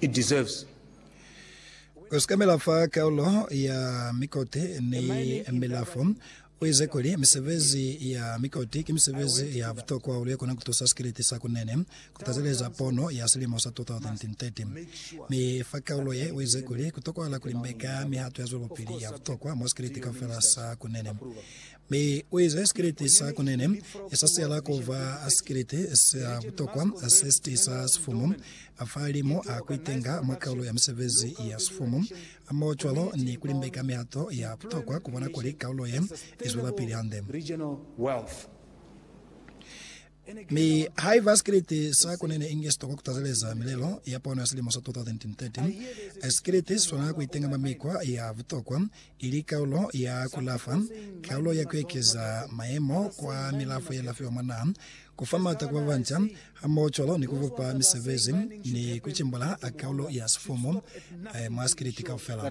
it deserves. Ku sekamela fa Karolo ya Mikoti ni Milafo, u ize kuli, Misebezi ya mikoti ki misebezi ya butokwa hahulu ye kona ku tusa sikiliti sa ku nene ku tazeleza pono ya silimo sa 2030. Mi fa Karolo ye, u ize kuli, Ku tokohala ku limbeka mihato ya zwelopili ya butokwa mwa sikiliti kaufela sa ku nene. Mi u ize, Sikriti sa kunene, sa siyala ku ba sikriti sa butokwa se si tisa sifumu fa limu a ku itenga mwa kaulo ya misebezi ya sifumu, hamoho cwalo ni ku limbeka mihato ya butokwa ku bona kuli kaulo ye i zwelapili hande. Mi haiba sikiliti sa ku nene inge si tokwa ku tazeleza milelo ya pono ya silimo sa 2013, sikiliti si swanela ku itenga mwa mikwa ya butokwa, ili kaulo ya ku lafa, kaulo ya ku ekeza mayemo kwa milafo ye lafiwa mwa naha, ku fa m'ata ku ba banca, hamohocwalo ni ku bupa misebezi ni ku cimbula kaulo ya sifumu mwa sikiliti kaufela.